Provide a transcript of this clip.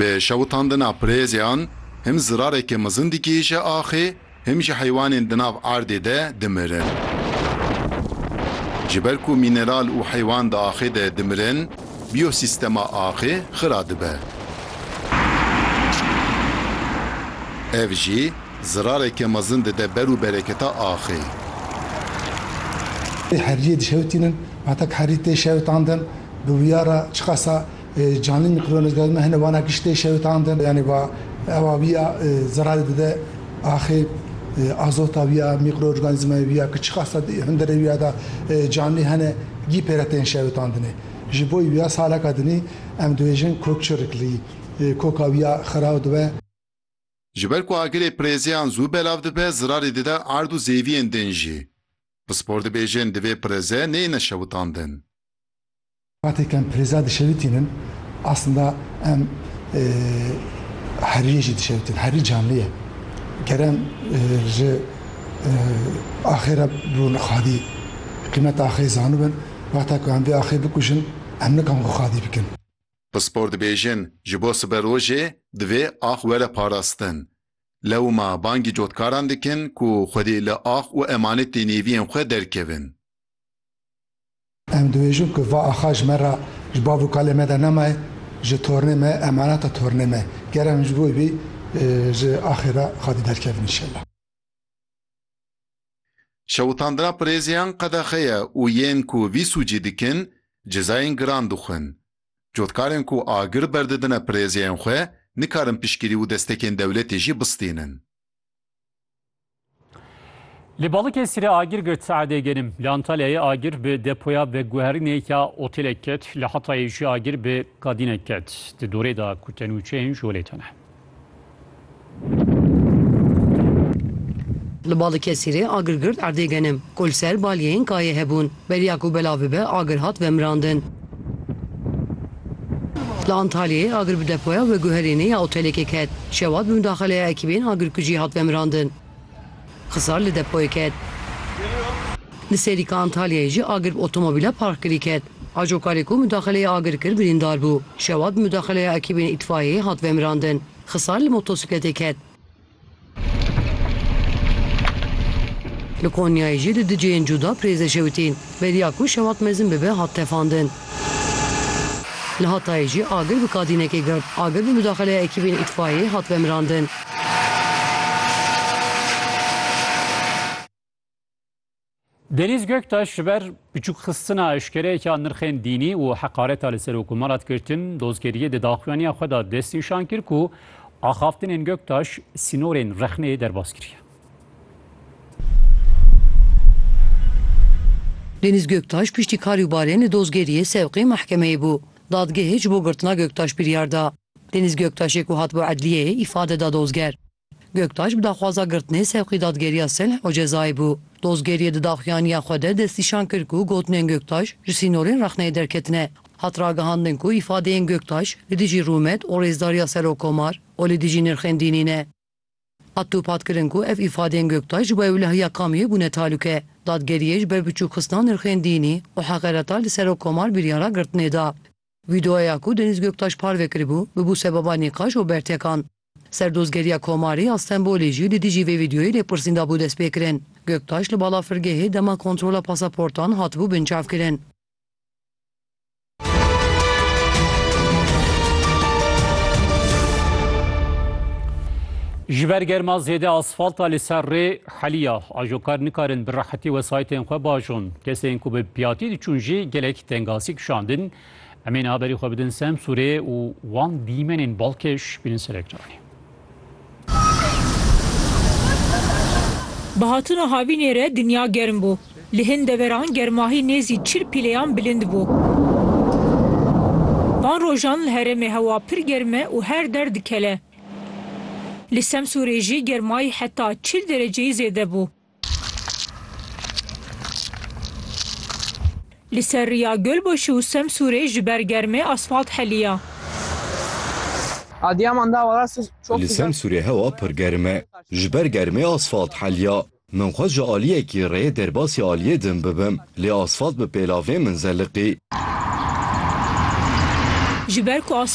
Bi şewitandina pirêzyan him zirareke mezin dikêşe axê, him jî heywanên di nav erdê de dimirin. Ji ber ku mîneral û heywan di axê de dimirin, biyosîstema axê xira dibe. Ev jî zirareke mezin dide ber û bereketa axê. Heriyê dişewitînin, ma tek herî tê şewitandin. Bi vîya re çiqasa canlî mikrobiyên zêde dime hene wana kişt tê şewitandin yanî va ewa vîya zerarê dide axê azota vîya mîkroorganîzmayê vîya ki çiqasa di hundirê vîya de canlî hene gî pêre tên şewitandinê. Ji bo vîya saleka dinî em dibêjin kokçiriklî koka vîya xiraw dibe. Ji ber ku agirê pirêzeyan zû belav dibe zerarê dide erd û zêviyên din jî. Pispor dibêjin divê pirêze neyêne şewitandin. Wextê ke em pirêza dişewitînin aslında em heriyê jî dişewitin. Herî canlî ye. Ger em ji axê re bibin xwedî, qîmeta axê zanibin, wexta ku em vê axê bikujin em nikan xwe xwedî bikin. Pispor dibêjin ji bo siberojê divê ax were parastin. Lewma bangî cotkaran dikin ku xwedî li ax û emanetê nêviyên xwe derkevin. Em dibêjin ku va axa ji me re, ji bav û kalê me de nemaye, ji tornê me, emaneta tornê me. Ger em ji bo vî ji axê re xwedî derkevin înşellah. Şewitandina pirêziyan qedexe ye û yên ku vî sûcî dikin cezayên giran dixwin. Cotkarên ku agir berdidine pirêziyên xwe nikarin piştgirî û destekên dewletê jî bistînin. Li Balıkesir e agir girt saedê genim. Li Antalyayê agir bi depoya veguherînê ya otelek ket. Li Hatayê jî agir bi kadînek ket. Di dorê de ku tenûçeyên ji holê tune. Li Balıkesirê agir girt erdê genim. Ku li ser balyeyên kayê hebûn. Beriya ku belav bibe agir hat vemirandin. Li Antalyayê agir bi depoya veguherînê ya otelekê ket. Şewat bi midaxeleya ekîbên agirkujî hat vemirandin. Xizar li depoyê ket. Li Serîka Antalyayê jî agir bi otomobîla parkkirî ket. Ajokarê ku midaxeleyê agir kir birîndar bû. Şewat bi midaxeleya ekîbên îtfaiyeyê hat vemirandin. Xizar li motosîkletê ket. Li Konyayê jî di du cihên cuda pirêze şewitîn. Beriya ku şewat mezin bibe hat tefandin. Li Hatayê jî agir bi kadînekê girt. Agir bi mudaxeleya ekîbên îtfayeyê hat vemirandin. Denîz Göktaş ji ber biçûkxistina eşkereyeke nirxên dînî û heqareta li ser Okumara Kirtin Dozgeriyê di daxuyaniya xwe de destnîşan kir ku axaftinên Göktaş sînorên rexneyê derbas kiriye. Denîz Göktaş piştî karî û barên li Dozgeriyê sevqê mehkemeyê bû. Dadgehê ji bo girtina Göktaş biryar da. Denîz Göktaşê ku hat bo edliyeyê îfade da dozger. Göktaş bi daxwaza girtinê sewqî dadgeriya silh û cezayê bû. Dozgeriyê di daxuyaniya xwe de destnîşan kir ku gotinên Göktaş ji sînorên rexneyê derketine. Hat ragihandin ku îfadeyên Göktaş li dijî rûmet û rêzdariya Serokkomar û li dijî nirxên dînî ne. Hat dûphat kirin ku ev îfadeyên Göktaş ji bo ewlehiya kamiyê bûne talûke. Dadgeriyê ji ber biçûkxistina nirxên dînî û heqereta li Serokkomar biryara girtinê da. Vîdeoya ku Denîz Göktaş parve kiribû, bibû sebaba nîqaş û bertekan. Serdozgeriya Komarê ya Stenbolê jî li dijî vê vîdeoyê lêpirsîn dabû destpêkirin. Göktaş li balafirgehê dema kontrola pasaportan hatibû binçavkirin. Ji ber germa zêde asfalta li ser rê heliya. Ajokar nikarin bi rehetî wesaytên xwe bajon. Kesên ku bi piyatî diçûn jî gelek tengasî kişandin. Em ê niha berî xwe bidin Semsûrê û wan dîmenên balkêş bînin ser ekranê. Bi hatina havînê re dinya germ bû. Li hin deveran germahî nêzî çil pîleyan bilind bû. Van rojan li herêmê hewa pir germ e û her der dikele. Li Semsûrê jî germayî heta çil dereceyî zêde bû. Li ser riya Gölbaşı û Semsûrê ji ber germê asfalt heliya. Li Semsûrê hewa pir germ e. Ji ber germê asfalt heliya. Min xwest ji aliyekî rê derbasî aliyê din bibim, lê asfalt bi pêlavê min zeliqî. Ji ber ku asfalt